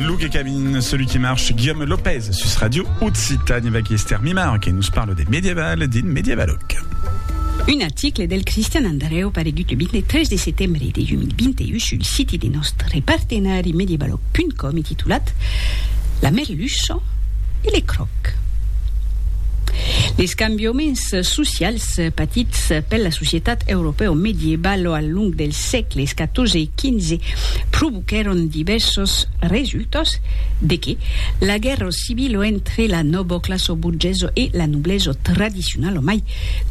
Luke Cabin, celui qui marche, Guillaume Lopez, sus Radio Occitanie, avec Esther Mimar, qui nous parle des médiévales, din médiévaloc. Un article del Cristian Andreu paregut le 23 de setembre de 2021 sul siti de nòstre partenari medievaloc.com e titulat La merluça e le cròc. Les cambiaments socials patits per la societat europèo-medievalo al long dels sègles 14 e 2015 provoquèron divèrsos resultats de que la guèrra civila entre la nòva classa borgesa e la noblesa tradicionala mai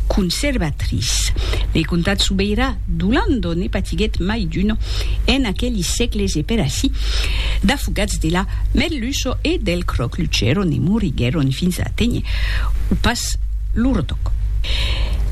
conservatrice de comtat sobeirà d'Olanda ne patiguèt mai d'una en aqueli sègles e per aicí d'afogats de la merluça e del cròc luchèron e moriguèron fins a aténher o pas lo retoc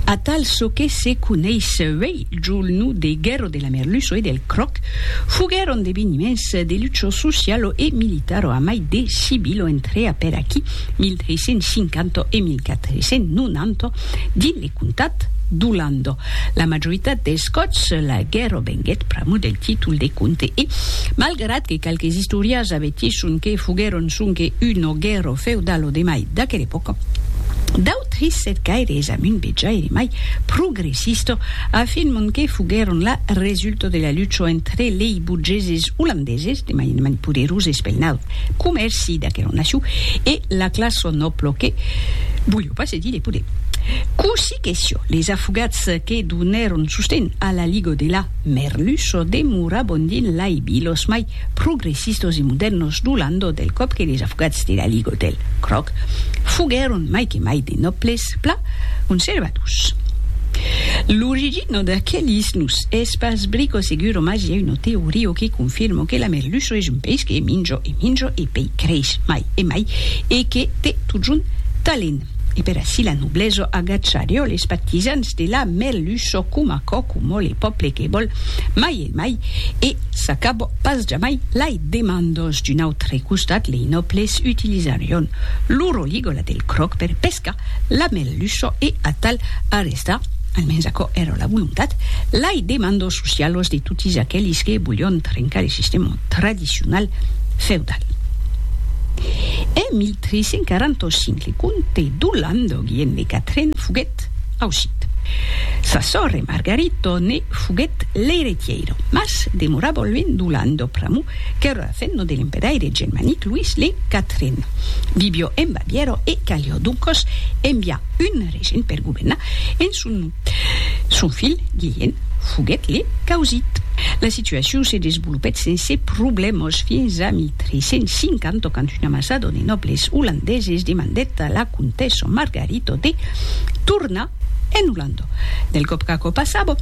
atal çò que se coneis uèi Julnu de Guerro de la Merluço e del Croc foguèron d'eveniments de lucho socialo e militaro a mai de civilo entre apèr aquí 1350 e 1490 dins le comtat d'Olando. La majoritat dels còps la guerro venguèt pr'amor del títol de comte e, malgrat que qualques istòrias avertisson que foguèron sonque una guerro feudalo de mai d'aquela epòca, d'autres cercaires amunt vejaire mai progressista. Sisto afirmon que foguèron la resulta de la lucha entre lei burgeses olandeses, de manifestament poderoses pel naut comèrci d'aquela nacion, e la classa nòbla que voliá pas cedir de poder. Cossí que siá, les afogats que donèron sosten a la Liga de la Merluça demorabon dins lei vilas mai progressistos e modèrnos do Landau del còp que les afogats de la Ligue del Cròc foguèron mai que mai de nòbles plan conservadors. L'origina d'aquelis nus es pas brico seguro mas i a una teoria que confirma que la Merluço es un país que minjo e minjo e pei creix mai e mai e que te totjorn talent e per aicí la noblesa agachariò les partisans de la Merluço coma quòcomò le pòple que vòl mai de mai, e s'acabò pas jamai lai demandos. D'un autre costat, lei nòbles utilisarion lo roligola del cròc per pescar la merluço e atal arrestar, almens aquò èra la volontat, lai demandos socialos de totis aquelis que volion trencar le sistèma tradicional feudal. En 1345 le comte d'Olanda Guillem de Catren foguèt ausit. Sa sòrre Margarito ne. Foguèt l'eiretièira, mas demorava luènh d'Olanda pr'amor qu'èra la femna de l'empedaire germanic Louis le Quatren. Vivió en Bavièra e calió doncas enviar un regent per governar en son nom. Son filh, Guilhèm, foguèt le causit. La situacion se desvolopèt sense problèmas fins a 1350 quand una masada de nòbles olandeses demandèt a la comtessa Margarita de tornar En Holanda, del còp qu'aquò passava,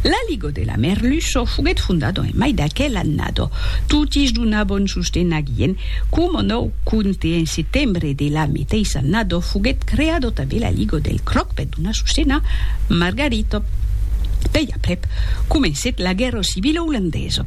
la Liga de la Merluça foguèt fondada en mai d'aquel annada. Totis donavon sosten aguien. Coma nòu compte, en setembre de la meteissa annada foguèt creada tanben la Liga del Cròc per donar sosten a Margarita. Pei aprèp, comencèt la guèrra civila olandesa.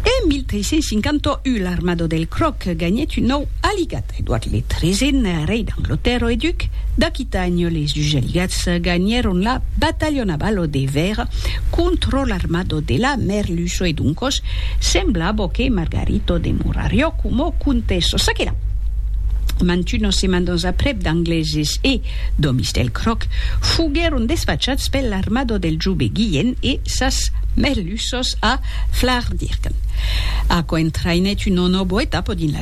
En 1351, l'armada del Cròc ganhèt un nòu aligat. Edward le Tresent, rei d'Anglatèrra e duc d'Aquitània, les dus aliats ganhèron la batalha navalo de Vèra contra l'armada de la Merluça e doncas semblava que Margarita demorariá coma comtessa. Ça que la, mantunas setmanas aprèp d'Angleses e d'òmis del Croc foguèron desfachats per l'armada del jove Guilhèn e sas Merluças a Flardirgan. Aquò entraïnèt una nòva etapa dins la.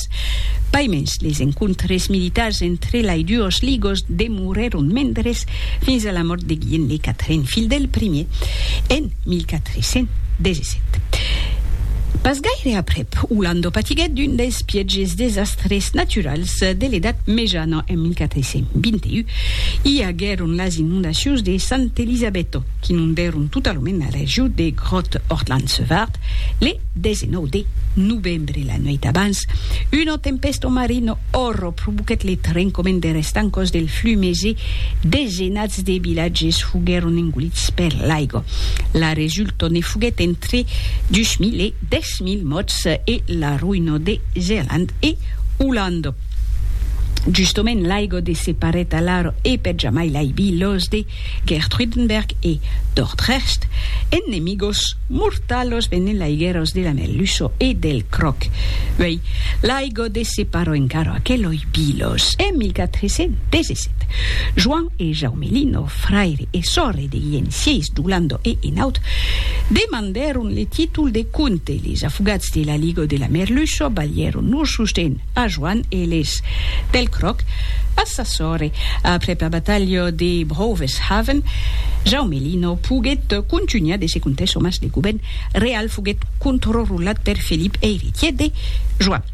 Estadas. Pas mens, les encontres militars entre lai duos ligos demorèron mendres fins a la mòrt de Guilhem le Quatren, filh del primier, en 1417. Pas gaire aprèp, Olando patiguèt d'un dels pièges desastres naturals de l'Edat Mejana en 1421. I aguèron las inondacions de Sant Elisabetto, qu'inondèron totalament la region de Groot-Hortland-Sevart le 19 de novembre. Dre la nuèit d'abans, una tempèsta marina òrra provoquèt le trencament der estancòs del Flumés e desenats de vilatges foguèron engolits per l'aiga. La resulta ne foguèt entre 2.000 e 10.000 mòrts e la roïna de Zealand e Olanda. Justament l'aiga de separèt alara e per jamai l'aibi los de Gertruydenberg e Dordrecht, ennemigos mortalos venent laigueros de la Melluço e del Croc. Uei, l'aigo de separò encara aqueloi bilos. En 1417, Joan e Jaume Lino, fraire e sòrre de Guilhèm vi d'Olanda e Enaut, demandèron le títol de comte. Les afogats de l'aligo de la Merluço balhèron lor sosten. a Joan Eles. Pel cròc, pas sa sòrre. Aprèp la batalha de Broveshaven, Jaume Lino poguèt contunhar de se contar çò mas de govèrn real foguèt controrulat per Felip eiretièr de Joan.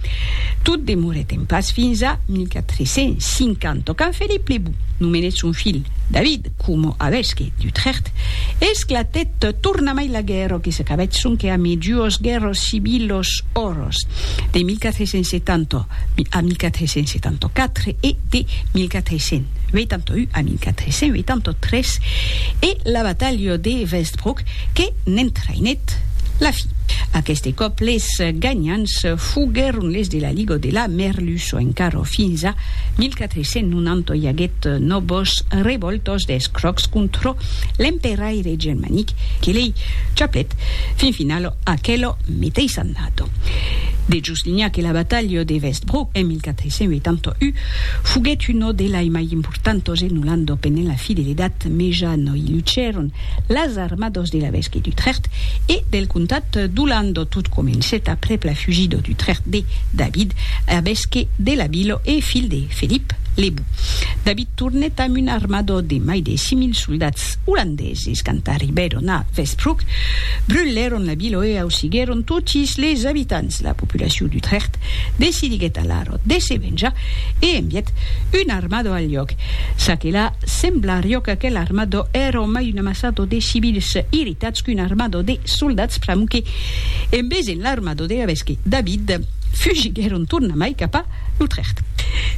Tot demorèt en pas fins a 1450 quand Felip le Bon nomenèt son filh David, coma avesque d'Utrecht, esclatèt tornamai la guèrra que s'acabèt sonque a mi duos guèrras civilos oros de 1470 a 1474 e de 1481 a 1483 e la batalha de Westbrook que n'entraïnèt la fin. Aqueste còp les ganhants foguèron les de la Liga de la Merluço encara fins a 1485. Se non anto i aguèt nobos revòltos des crocs contrò l'emperaire germanic que lei chaplèt fin finalo aquelo meteis annato. De juslinha que la batalha de Westbrook en 1481 foguèt uno delai mai importantos e nolando penent la fidelitat meja no i lucèron las armados de l'evesqui d'Utrecht e del comtat d'Olando. Tot comencèt aprèp la fugida d'Utrecht de David, evesque de la vila e filh de Felip le Bou. David tornèt amb un armada de mai de 6.000 soldats olandeses. Quand arribèron a Westbroek, brulèron la vila e ausiguèron totis les abitants. La populacion d'Utrecht decidiguèt alara de se venjar e envièt una armada al. lloc. Ça que la, sembla rioc aquel armado èra au mai un amassado de civils irritats qu'un armado de soldats pr'amor que, en vesent l'armado de Gavesque, David, fugiguèron tornamai cap a L'Utrecht.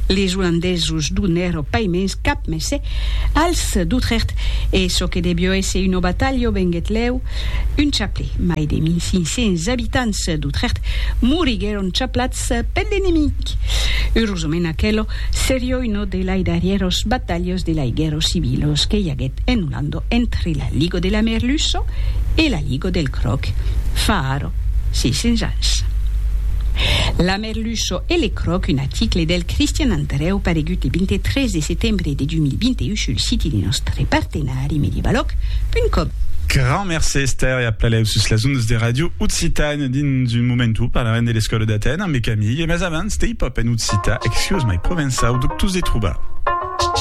Les Olandesos donèro pas mens cap messè als d'Utrecht e çò que devió èsser una batalha o venguèt lèu un chaplè. Mai de 1500 abitants d'Utrecht moriguèron chaplats Ps, pèn d'enemic! Eurosament aquelo serió uno de lai darrièros batalhos de lai guèrros civilos que i aguèt en Olando entre la Ligo de la Merluço e la Ligo del Cròc fa ara 600 ans. La Merluço e le Cròc un aticle del Cristian Andrèu paregut le 23 de setembre de 2021 sul siti de nòstre partenari medievaloc punt com. Grand mercé Esther e a plaleus sus las ondas de Radio Occitània. Dins un momentu parlarem de l'escòla d'Aten ambe Camille, mas abans, Stay Pop en occitan, Excuse my provençau, dubtós de trobar.